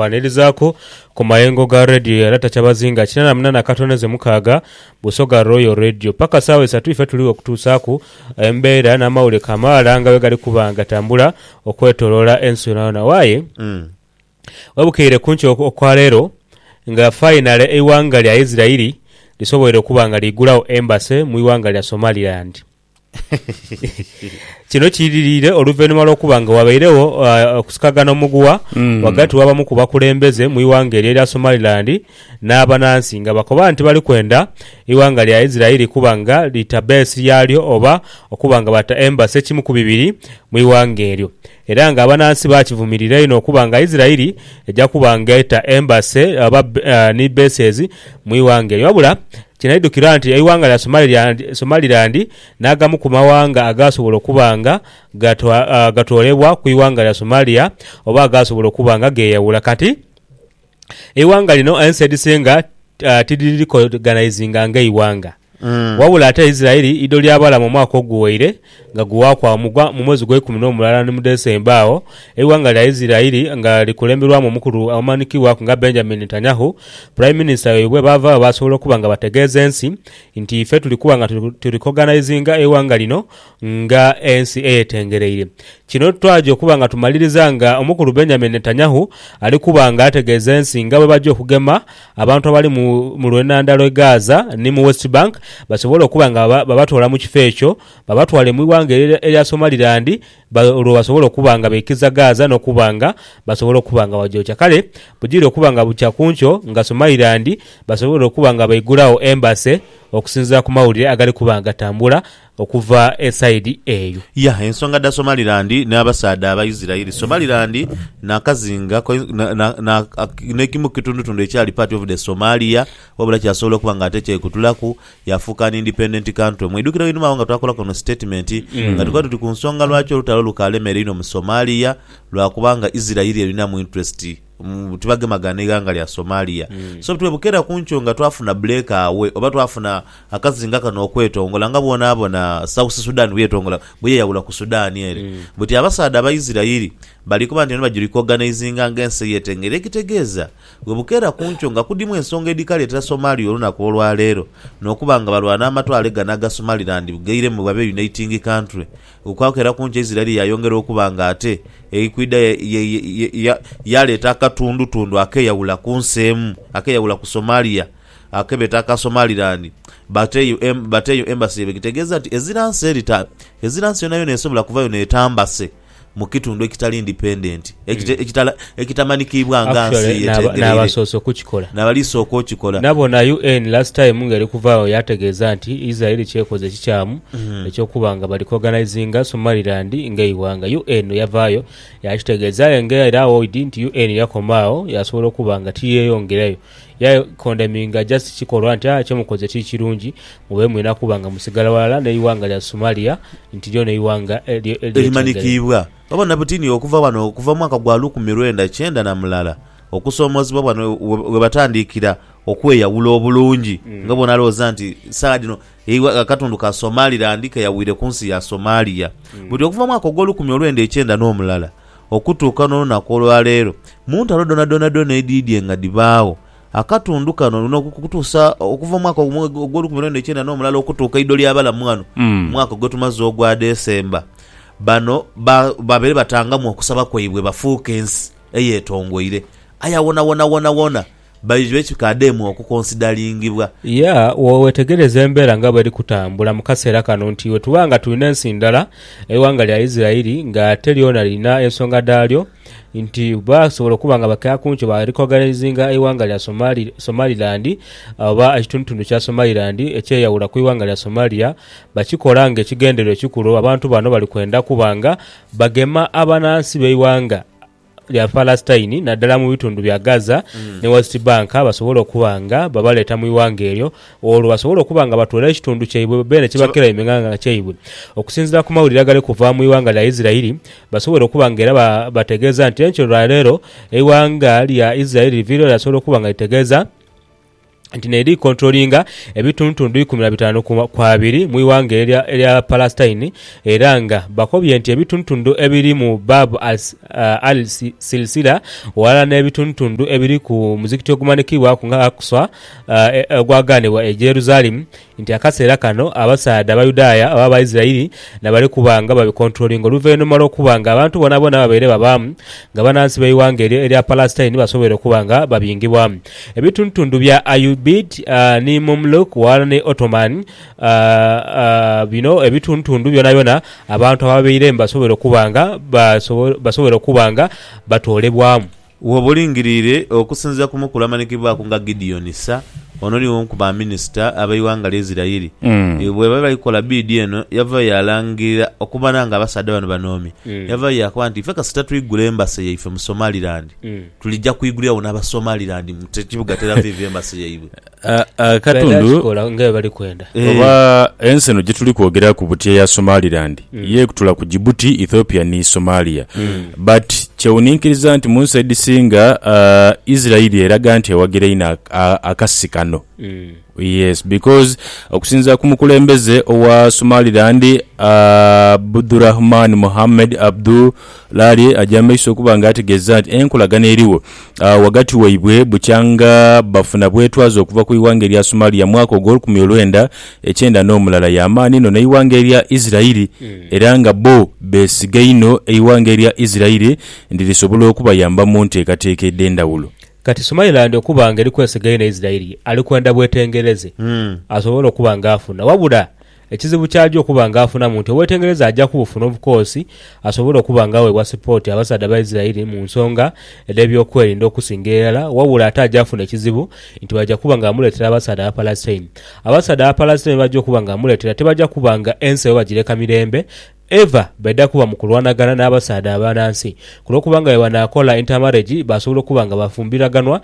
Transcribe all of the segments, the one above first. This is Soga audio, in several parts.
Kwanirizaku ku mayengo ga Radio era takyabazinga kinana munana katono ze mukaaga Busoga Royal Radio. Paka saawa isatu ife tuligho okutuusaaku embeera n'amawulire kamaala nga bwegali kuba nga gatambula okwetoloola ensi yonayona. Waye webukeire kunkyo okwa leero nga fayinale eighanga lya Isirairi lisoboire okuba nga liigulagho embase mu ighanga lya Somaliland. Kino kiidhiriire oluvainhuma lw'okuba nga wabairegho okusikagana omuguwa ghagati w'abamu ku bakulembeze mu ighanga eryo erya Somaliland n'abanansi nga bakoba nti bali kwenda eighanga lya Israeli kuba nga lita base yaalyo oba okuba nga bata embassy ekimu ku bibiri mu ighanga eryo. Era nga abanaansi baakivumirira inho okuba nga Isiraeli eja kuba nga eta embase oba ni bases mu ighanga eryo. Wabula kinaidhukirwa nti eighanga lya Somaliland n'agamu ku maghanga agaasobola okuba nga gatoolebwa ku ighanga lya Somalia oba agaasobola okuba nga geeyawula kati. eighanga lino ensi edhisinga tidhirikoganaizinga ng'eighanga. Wabula ate Isiraeli idho lyabalamu omwaka oguwaire nga guwaaku agho mu mwezi ogweikumi n'omulala ni mu Desemba agho eighanga lya Isiraeli nga likulemberwamu omukulu amanhikibwaku nga Benjamin Netanyahu, Prime Minister waibwe baavaagho baasobola okuba nga bategeeza ensi nti ife tuli kuba nga tuli koganaizinga eighanga lino nga ensi eyetengereire. Kino twaja okuba nga tumaliriza nga omukulu Benjamin Netanyahu ali kuba nga ategeeza ensi nga bwebaja okugema abantu abali mu lwenhandha lwe Gaza ni mu West Bank basobole okuba nga babatoola mu kifo ekyo babatwale mu ighanga erya Somaliland olwo basobole okuba nga beikiza Gaza nokuba nga basobola okuba nga bagyokya. Kale bugire okuba nga bukya kunkyo nga Somaliland basobweire okuba nga baigulagho embassy okusinziira ku mawulire agali kuba nga gatambula. okuva e saidi eyo. Yah, ensonga dha Somaliland n'abasaadha Abaisiraeli, Somaliland n'akazinga ko na n'ekimu ku kitundutundu ekyali part of the Somalia wabula kyasobola okuba nga ate kyekutulaku yaafuuka an independent country. Mwidhukira einhuma agho nga twaakolaku eno statement nga tukoba tuti ku nsonga lwaki olutalo lukaalemeera inho mu Somalia lwa kubanga Isiraeli erinamu interest mm, tibagemagana n'eighanga lya Somalia. So butwire bukeera ku nkyo nga twafuna bbuleka awe, oba twafuna akazinga kano okwetongola nga bw'onaabona Sausi Sudan bw'eyetongola, bw'eyeyawula ku Sudan ere. Buti abasaadha Abaisirairi bali kuba nti bano bajuli kwoganaizinga nga ensi eyetengera. Ekitegeeza bwe bukeera ku nkyo nga kudimu ensonga edhikaleetera Somalia olunaku olwa leero n'okuba nga balwana amatwale gano aga Somaliland bgairemu babe a uniting country, Okwakera kungi Isiraeli yaayongera okuba nga ate eri kwidha yaaleeta akatundutundu akeeyawula ku nsi emu, akeeyawula ku Somalia ake beeta aka Somaliland. But eyo embassy ye bwegitegeeza nti ezira nsi eri ta, ezira nsi yonayona esobola kuvayo n'etambase mu kitundu ekitali independent, ekitali. ekitamanikibwa nga nsi Actually naba- eyetengereire nabasoose okukikola. nabali sooka okikola. Nabona UN last time nga eri kuvaagho yategeeza nti Israel kyekoze ekikyamu eky'okuba nga bali kuorganizinga Somaliland ng'eighanga. UN yavaayo yakitegeeza aye nga era Aoid nti UN yakoma agho yasobola okuba nga tiyeyongerayo. Yakondeminga just kikolwa nti ah kyemukoze ti kirungi mube mwina kuba nga musigala ghalala n'eighanga lya Somalia nti lyo n'eighanga elye- elyetengereire. Erimanikiibwa. Babona buti ni okuva ghano okuva mu mwaka gwa lukumi lwenda kyenda na mulala, okusoomoozebwa ghano we batandiikira okweyawula obulungi nga bw'onaalowooza nti saagha dhino akatundu ka Somaliland keyawire ku nsi ya Somalia. Buti okuva mu mwaka ogw'olukumi olwenda ekyenda n'omulala okutuuka n'olunaku olwa leero, mu ntalo dhoonadhoona dhoona edhiidye nga dhibaagho, akatundu kano n'okutuusa okuva mu mwaka ogw'olukumi olwenda ekyenda n'omulala okutuuka eidho ly'abalamu ghano mu mwaka gwetumaze ogwa December, Bano ba, babeere batangamu okusaba kwaibwe bafuuke ensi eyetongoire. Aye awona wona wona wona baidhwe kikaademu okukonsidalingibwa. Ya, wo wetegereza embeera nga bweri kutambula mu kaseera kano nti wetuba nga tulina ensi ndala, eighanga lya Isiraeli nga ate lyona lirina ensonga dhalyo, nti basobola okuba nga bakeya ku nkyo ba rikoganaizinga eighanga lya Somaliland oba ekitundutundu kya Somaliland ekyeyawula ku ighanga lya Somalia bakikola nga ekigendererwa ekikulu abantu bano bali kwenda kuba nga bagema abanansi b'eighanga lya Palestine naddala mu bitundu bya Gaza ni West Bank basobole okuba nga babaleeta mu ighanga eryo olwo basobole okuba nga batoola ekitundu kyaibwe beene ekibakira aime nga nga kyaibwe, okusinziira ku mawulire agali kuva mu ighanga lya Isiraeli, basobole okuba nga era bategeeza nti enkyo lwa leero eighanga lya Isiraeli liviireyo lyasobola okuba nga litegeeza nti n'eri likontulolinga ebitundutundu ikumi na bitaanu ku abiri mu ighanga eryo erya Palastine era nga bakobye nti ebitundutundu ebiri mu Bab al-Silsila ghalala n'ebitundutundu ebiri ku muzikiti ogumanhikiibwaku nga Aqsa ogwagaanibwa e Jerusalemu nti akaseera kano abasaadha Abayudaaya oba Abaisiraeli na bali kuba nga babikontulolinga oluvainhuma lw'okuba nga abantu boonaboona ababaire babaamu nga banansi b'eighanga eryo erya Palasitaini basoboire okuba nga babingibwa. Ebitundutundu bya Ayyubid ni Mumluk ghalala ni Ottoman, bino ebitundutundu byonabyona abantu ababaire basoboire okuba nga basoboire okuba nga batoolebwamu. Woba olingiriire okusinziira ku mukulu amanyikibwaku nga Gideon Ssa, ono ni omu ku ba minisita ab'eighanga lya Isiraeli, bwebali bali kukola biidi eno yavayo yalangirira okumana nga abasaadha bano banoomye. Yavayo yakoba nti ife kasita twigula Embassy yaife mu Somaliland, tulija kwiguliragho n'Abasomaliland mu kibuga Tel Aviv Embassy yaibwe. Akatundu oba ensi eno gyetuli kwogeraku buti eya Somaliland mm. ye ekutula ku Djibouti, Ethiopia ni Somalia mm. but kyewuninkiriza nti mu nsi edhisinga uh, Israeli eraga nti ewagira ino akasi kano mm. yes because okusinzira ku mukulembeze owa Somaliland uh, Abdurahman Mohamed Abdu Larie aja mu maiso okuba nga ategeeza nti enkolagana erigho agho ghagati waibwe bukyanga bafuna bwetwaze okuva ku ighanga erya Somalia mwaka ogw'olukumi olwenda ekyenda n'omulala ya maani inho n'eighanga erya Isirairi era nga bo beesiga inho eighanga erya Isirairi nti lisobola okubayamba mu nteekateeka edh'endhawulo. Kati Somaliland okuba nga eri kwesiga inho Isirairi ali kwenda bwetengereze asobole okuba nga afuna wabula Ekizibu ky'aja okuba ng'afunamu nti obwetengereza aja kubufuna obukoosi asobole okuba ng'aweebwa sipooti abasaadha ba Isiraeli mu nsonga edh'ebyokwerinda okusinga irala, wabula ate aja funa ekizibu nti baja kuba nga bamuleetera abasaadha Abapalastine. Abasaadha Abapalastine be baja okuba nga bamuleetera tibaja kuba nga ensi eba bagireka mirembe. Eva baidha kuba mu kulwanagana n'abasaadha abanansi kulw'okuba nga bwe banaakola inter-marriage baasobola okuba nga bafumbiraganwa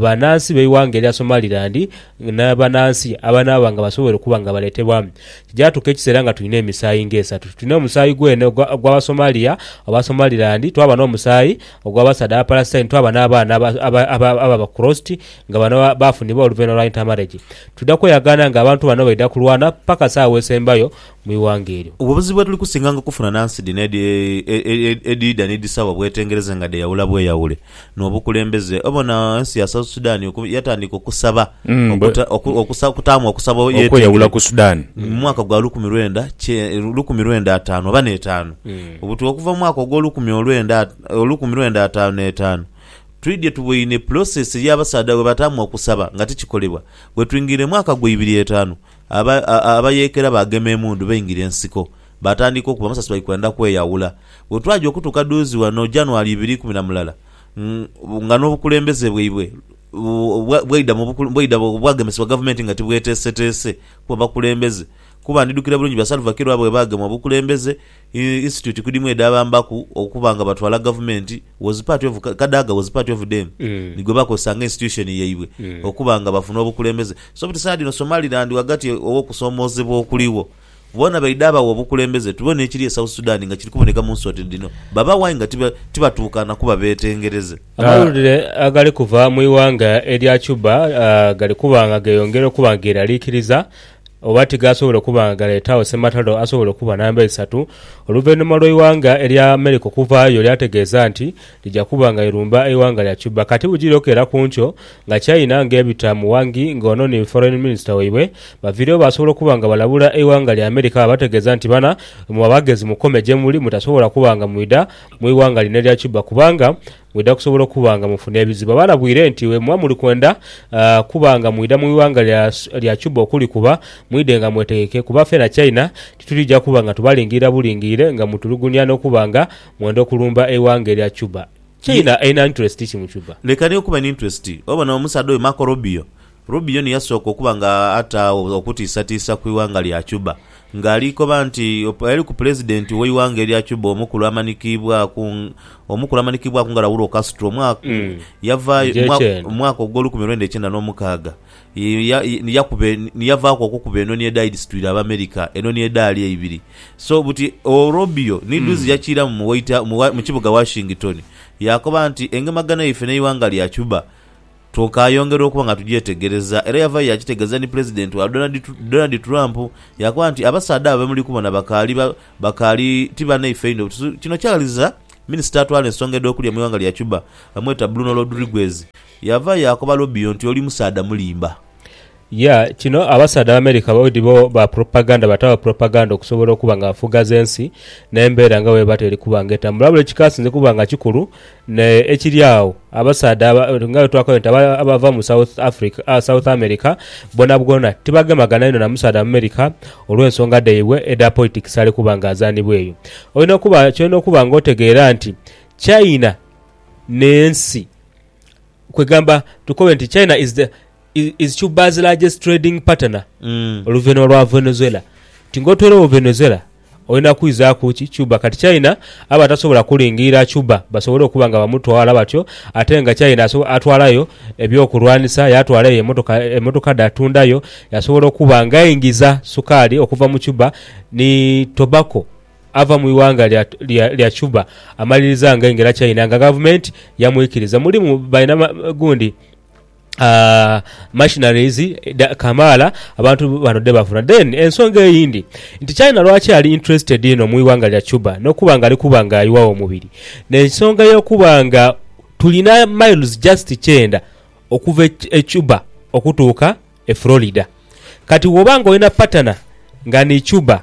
banansi b'eighanga erya Somaliland ni banansi abanaaba nga basoboire okuba nga baleetebwamu. Kijaatuuka ekiseera nga tulina emisaayi ng'esatu. Tulina omusaayi gwene ogw'Abasomalia oba Somaliland, twaba n'omusaayi ogw'abasaadha Abapalastine, twaba n'abaana ababa crossed nga bano baafunibwa oluvainhuma lwa inter-marriage. Twidha kweyagaana ng'abantu bano baidha kulwana paka saawa esembayo mu ighanga eryo. Obwo buzibu bwetuli kusinganga okufuna nansi dhino edhiidha ni dhisawa bwetengereze nga dheyawula bweyawule nobukulembeze. Obona ensi ya South Sudan yatandika okusaba okutaamu okusaba okweyawula ku Sudan mu mwaka gwa lukumi lwenda lukumi lwenda ataanu oba n'etaanu buti okuva mu mwaka ogwolukumi olwenda olukumi lwenda ataanu n'etaanu twidhye tuboine process yabasaadha bwebataamu okusaba nga tikikolebwa bwetwingiire mu mwaka gwa ibiri etaanu Aba, a, abayeekera baagema emundu, baingira ensiko, baatandika okuba amasasi, bali kwenda kweyawula. Bwe twaja okutuuka dhuuzi ghano, January ibiri ikumi na mulala, ng, nga n'obukulembeze bwaibwe bwa, bwaidha mu bukul, bwaidha bwagemesebwa gavumenti nga tibweteeseteese kuba bakulembeze, kuba ndidhukira bulungi ba Salva Kiir oba bwe baagemwa obukulembeze, Institute kudimu edhabambaku okuba nga batwala gavumenti was part of Kadaga was part of dem ni gwe bakozesa nga institution yaibwe okuba nga bafuna obukulembeze so buti saidi eno Somaliland ghagati ow'okusoomoozebwa okuligho boona baidha bagha obukulembeze tube n'ekiri e South Sudan nga kiri kuboneka mu nsi oti dhino baba why nga tibatuukana kuba beetengereze. Amawulire agali kuva mu ighanga erya Cuba gali kuba nga geeyongera okuba nga geeraliikiriza oba tigaasobola okuba nga galeetaagho ssematalo asobola okuba namba eisatu oluvainhuma lw'eighanga erya America okuvaayo lyategeeza nti lija kuba nga lirumba eighanga lya Cuba kati bugiri okeera ku nkyo nga China ng'ebita mu Wang Yi nga ono ni Foreign Minister waibwe baviirewo baasobola okuba nga balabula eighanga lya America baabategeeza nti bana imwe abagezi mukome gyemuli mutasobola kuba nga mwidha mu ighanga lino erya Cuba kubanga Mwidha kusobola okuba nga mufuna ebizibu. Abalabwire nti bwe muba muli kwenda kuba nga mwidha mu ighanga lya Cuba okulikuba, mwidhe nga mwetegeke kuba fena China titulija kuba nga tubalingirira bulingirire nga mutulugunya n'okuba nga mwenda okulumba eighanga erya Cuba. China erina interest ki mu Cuba? Leka ni okuba n'interest. Obona omusaadha oyo Marco Rubio Rubio ni yasooka okuba nga ataagho okutiisatiisa ku ighanga lya Cuba, nga ali koba nti eyali ku pulezidenti w'eighanga erya Cuba omukulu amanikiibwaku omukulu amanikiibwaku nga Raul Castro yavaayo mu mwaka ogw'olukumi lwenda ikyenda n'omukaaga ni yakuba ni yavaaku okukuba enoni edhaali dhisitwire Abamerika enoni edhaali eibiri. So buti oo Rubio ni dhuuzi yakiiramu mu White mu kibuga Washington yaakoba nti engemagana yaife n'eighanga lya Cuba, Twokayongera okuba nga tugyetegereza era yavayo yakitegeeza ni Pulezidenti wa Donald Trump yaakoba nti abasaadha abo bemuli kubona bakaali bakaali ti banaife inho butusu. Kino kyaghaliza Minisita atwala ensonga edh'okulya mu ighanga lya Cuba bamweta Bruno Rodriguez yavayo yaakoba Robio nti oli musaadha mulimba. Ya, kino abasaadha Abamerica bweidi bo ba propaganda bataagho propaganda okusobola okuba nga bafughaza ensi n'embeera nga bwebata eri kuba nga etambula. Wabula ekikasinze kuba nga kikulu ne ekiri agho, abasaadha aba, nga bwetuakoire nti aba, abava mu South Africa, ah, South America bwonabwona tibagemagana inho na musaadha Mumerika olw'ensonga dhaibwe edha politics ali kuba nga azaanibwa eyo. Olina okuba, kyolina okuba nga otegeera nti China n'ensi, kwegamba tukobe nti China is the. is, is Cuba's largest trading partner Mm. oluvanhuma lwa Venezuela nti nga otoiregho Venezuela olina kwizaaku ki Cuba kati China aba atasobola kulingirira Cuba basobole okuba nga bamutwala batyo ate nga China aso- atwalayo eby'okulwanisa yatwalayo emotoka emotoka dhatundayo yasobola okuba nga aingiza sukaali okuva mu Cuba ni tobacco ava mu ighanga lya, lya, lya Cuba amaliriza nga aingira China nga gavumenti yamwikiriza mulimu balina ma- gundi machineries kamaala abantu bano dhebafuna. Then ensonga eyindi nti China lwaki ali interested inho mu ighanga lya Cuba n'okuba nga ali kuba nga ayiwagho omubiri n'ensonga ey'okuba nga tulina miles just kyenda okuva e Cuba okutuuka e Florida. Kati bw'oba nga olina partner nga ni Cuba.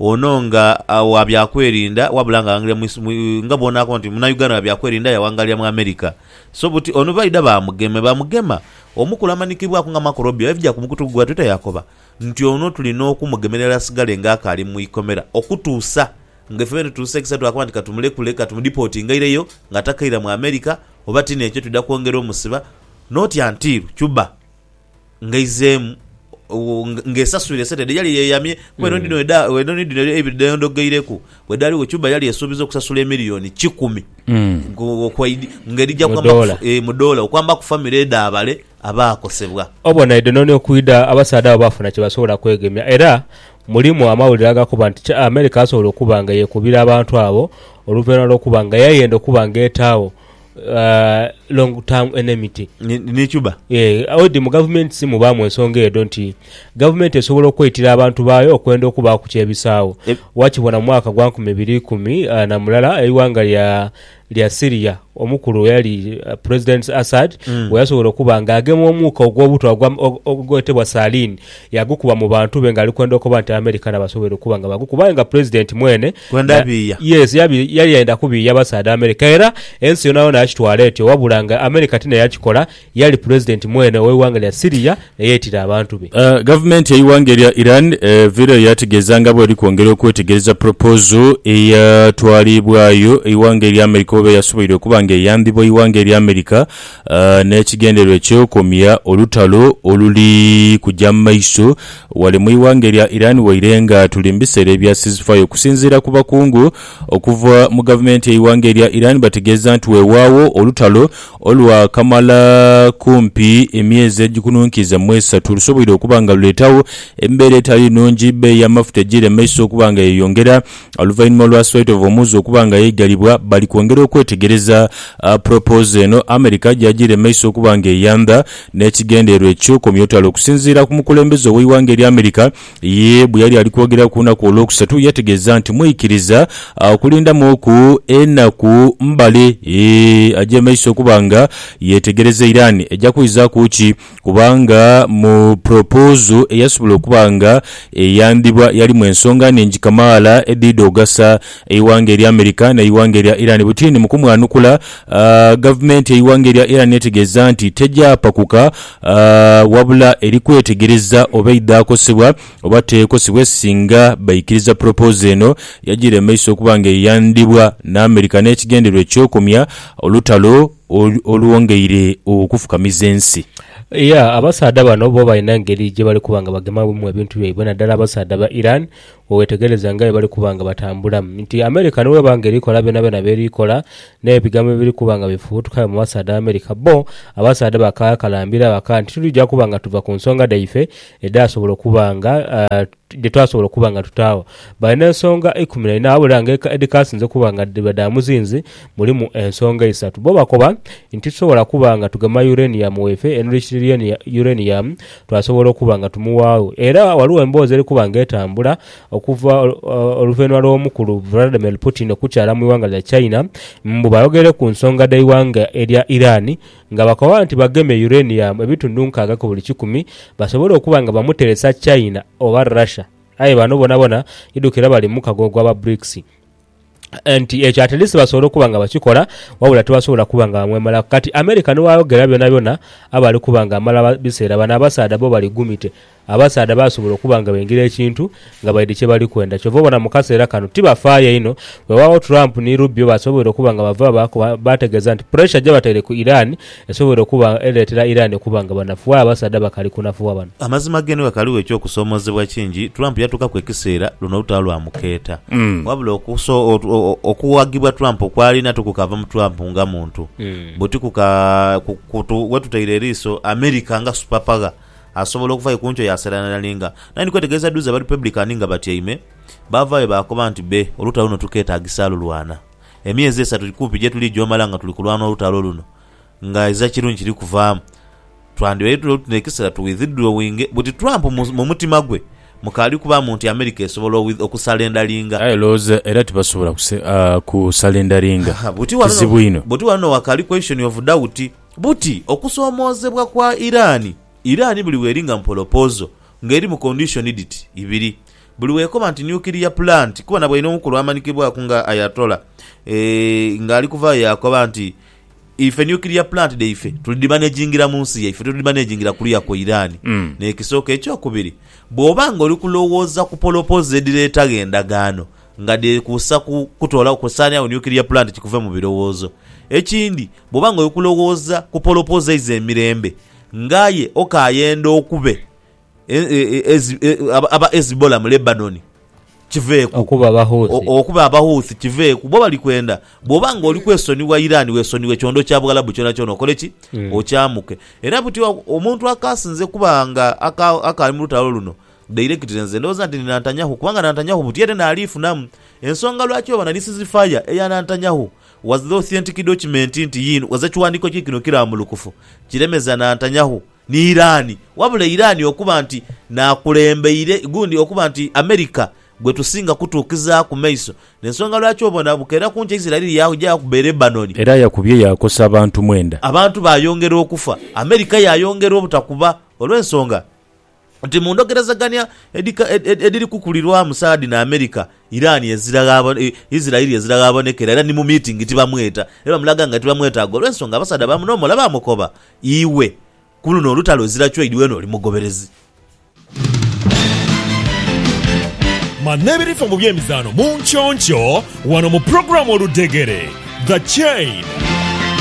Ono nga wa byakwerinda wabula nga aghangirira mu mu nga bwonako nti munauganda wa byakwerinda yawangalira mu America so buti ono baidha bamugeme bamugema omukulu amanikibwaku nga Marco Robio yaivja ku mukutu gwa twitter yakoba nti ono tulina okumugemerera asigale nga akaali mu ikomera okutuusa nga ife bwetutuusekisa twakoba nti katumulekule katumudipotinge aireyo nga takaira mu America oba tinekyo twidha kwongera omusiba notya ntiru Cuba ngaizeemu ng'esaswire esente dhe yali yeeyamye kuba eno dhino edha- eno ni dhino eibiri dheyondogeireku. Bwe dhaaliwo Cuba yali esuubiza okusasula emiliyoni kikumi Mm. ngu- okwaidi ng'edhija Mu kwamba ku- doola. eh, mu doola okwamba ku famire edh'abale abaakosebwa. Obona edhononi okwidha, abasaadha abo baafuna kye basobola kwegemya. Era mulimu amawulire agakoba nti kya- Amerika yasobola okuba nga yeekubira abantu abo oluvannyuma lw'okuba nga yayenda okuba ng'etaagho long term enmity. Ni cuba. Yee, odi mu gavumenti mubaamu ensonga edho nti gavumenti esobola okweitira abantu baayo okwenda okubaaku ky'ebisaagho. Wakibona mu mwaka gwa nkumi ibiri ikumi na mulala eighanga lya Syria omukulu eyali Pulezidenti Assad bwe yasobola okuba nga agema omuuka ogw'obutwa ogwetebwa saline Yagukuba mu bantu be ng'ali kwenda okoba nti Abamericana basoboire okuba nga bagukuba aye nga Pulezidenti mwene Kwenda ya, biiya. yes, yabi, yali yenda kubiiya basaadha America era ensi yonayona yakitwala etyo wabula nga America ti naye yakikola, yali Pulezidenti mwene ow'eighanga lya Syria eyeetira abantu be. Gavumenti y'eighanga erya Iran evaireyo yaategeeza nga bw'eri kwongera okwetegereza polopozo eyatwalibwayo eighanga erya America oba eyasoboire okuba nga eyambibwa eighanga erya America n'ekigendererwa eky'okomya olutalo oluli kuja mu maiso ghale mu ighanga erya Iran waire nga tuli mu biseera ebya ceasefire. Okusinziira ku bakungu okuva mu gavumenti y'eighanga erya Iran bategeeza nti weewaagho olutalo olwa kamala kumpi emyezi egikununkiiza mu esatu lusoboire okuba nga luleetagho embeera etali nnungi, bbeeyi y'amafuta ejiiremesa okuba nga yeyongera Oluvainhuma lwa Swaitov omuuzi okuba nga yaigalibwa, bali kwongera okwetegereza propozo eno America gyagyiire maiso okuba nga eyandha n'ekigendererwa eky'okomya olutalo. Okusinziira ku mukulembeze ow'eighanga erya America, ye bweyali ali kwogera ku lunaku Olwokusatu yategeeza nti mwikiriza okulindamuuku enaku mbale agye maiso okuba nga yetegereza Iran eja kwizaaku ki. kubanga mu pulopozo eyasobola okuba nga eyandhibwa yalimu ensonga nhingi kamaala edhidha ogasa eighanga erya America n'eighanga erya Iran. Butini mu kumwanukula, gavumenti y'eighanga erya Iran etegeeza nti tegyapakuka wabula eri kwetegereza oba eidha kosebwa oba tekosebwe singa baikiriza pulopozo eno yagira emaiso okuba nga eyandhibwa n'America n'ekigendererwa eky'okomya olutalo olwongeire okufukamiza ensi. Iya, abasaadha bano bo balina engeri gye bali kuba nga bagemamu ebintu byaibwe, naddala abasaadha ba Iran bwe weetegereza nga bwe bali kuba nga batambula. Nti America ni bw'eba nga eri kola byonabyona by'eri kola, n'ebigambo ebiri kuba nga bifubutuka mu basaadha ba America, bbo abasaadha bakakalambira baka nti, Tuli ja kuba nga tuva ku nsonga dhaife edhaasobola okuba nga dhe twasobola okuba nga tutaagho. Balina ensonga ikumi na ina wabula nga edhikasinze okuba nga dhiba dha muzinzi mulimu ensonga isatu. Bbo bakoba nti titusobola kuba nga tugema uranium waife, enriched uranium twasobola okuba nga tumuwaagho. Era ghaligho emboozi eri kuba nga etambula okuva oluvainhuma lw'omukulu Vladimir Putin okukyala mu ighanga lya China mbu bayogere ku nsonga dh'eighanga erya Iran, Nga bakoba nti bagema uranium ebitundu nkaaga ku buli kikumi, basobola okuba nga bamuteresa China oba Russia. Aye bano bonabona idhukira bali mu mukago ogwa ba Brics. Nti ekyo at least basobola okuba nga bakikola wabula tibasobola kuba nga bamwemalaku. Kati America ni bwayogera byonabyona aba ali kuba nga amala biseera, bano abasaadha bo bali gumite. Abasaadha basobola okuba nga baingira ekintu nga baidhi kye bali kwenda. Kyova obona mu kaseera kano tibafaayo inho. Weewaawo Trump ni Rubio basoboire okuba nga bava baa kuba baategeeza nti puresha gye bataire ku Iran esoboire okuba ereetera Iran okuba nga banafu. Aye abasaadha bakali kunafuwa bano. Amazima geenhe ghakaligho eky'okusoomoozebwa kingi, Trump yatuukaku ekiseera luno olutalo lwamukeeta. Wabula okuso, okuwagibwa Trump kw'alina tikukaava mu Trump nga muntu, buti kuka, ku, ku, wetutaire eriiso America nga supapagha Asobola okuva aye ku nkyo yaaseranali nga naye ndi kwetegereza duuzi Abarepublican nga batyaime, baavaayo baakoba nti be, olutalo luno tukeetaagisa lulwana. Emyezi esatu kumpi gye tuli gy'omala nga tuli kulwana olutalo luno, nga iza kirungi kiri kuvaamu, twandibaire tuli oti n'ekiseera tu withdrawinge, buti Trump mu, mu mutima gwe mukaali kubaamu nti America esobola o, okusalendalinga. Aye lowooza era tibasobola kuse, a, kusalendalinga. Ha, ha, buti wano no, Kizibu inho. buti wano no wakaali question of doubt. Buti okusoomoozebwa kwa Iran, Iran buli weeri nga mpolopoozo, nga eri mu condition dhiti ibiri. Buli wekoba nti nuclear plant kuba na bwaine omukulu amanikibwaku nga Ayatollah eeh nga ali kuvayo yaakoba nti ife nuclear plant dhaife tulidhimanagingira mu nsi yaife tulidhimanagingira kuluya kwa Iran. N'ekisooka. Ekyokubiri, bwoba nga oli kulowooza ku polopoozo edhireetagho endagaano, nga dheekuusa ku kutoolawo kusaanirawo nuclear plant kikuve mu birowoozo. Ekindi, bw'oba nga oli kulowooza ku polopoozo eiza emirembe, ng'aye okaayenda okube aba Hezbollah mu Lebanon, kiveeku. Okuba Abahouthi. Okuba Abahouthi, kiveeku. Bbo bali kwenda bw'oba nga oli kwesonyiwa Iran weesonyiwe kyondo kya Bughalabu kyonakyona okole ki? Okyamuke. Era buti omuntu akaasinze kuba nga akaali mu lutalo luno, Dairekitire nze ndhooza nti ni Nantanyahu kubanga Nantanyahu buti era naaliifunamu. Ensonga lwaki oba na lisizifaya eya Nantanyahu was the authentic document nti yiino was ekiwandiiko kye kino kirambulukufu kiremeza Nantanyahu ni Iran wabula Iran okuba nti n'akulembeire gundi okuba nti America gwe tusinga kutuukizaaku maiso n'ensonga lwaki obona bukeera kunkya Israel yaja yakuba e Lebanon Era yakubye yaakosa abantu mwenda. abantu baayongera okufa, America yaayongera obutakuba olw'ensonga. nti mu ndhogerezegania edhiri kukulirwamu Saadi ni Amerika, Iran ezira ghaabonekera, Israeli ezira ghaabonekera era ni mu miitingi tibamweta. Era bamulaga nga tibamwetaaga olw'ensonga abasaadha ba munomola baamukoba, Iwe ku luno olutalo ezira choid weena oli mugoberezi. Manha ebirifa mu by'emizaano mu nkyonkyoo wano mu pulogulaamu Oludhegere, The Chain.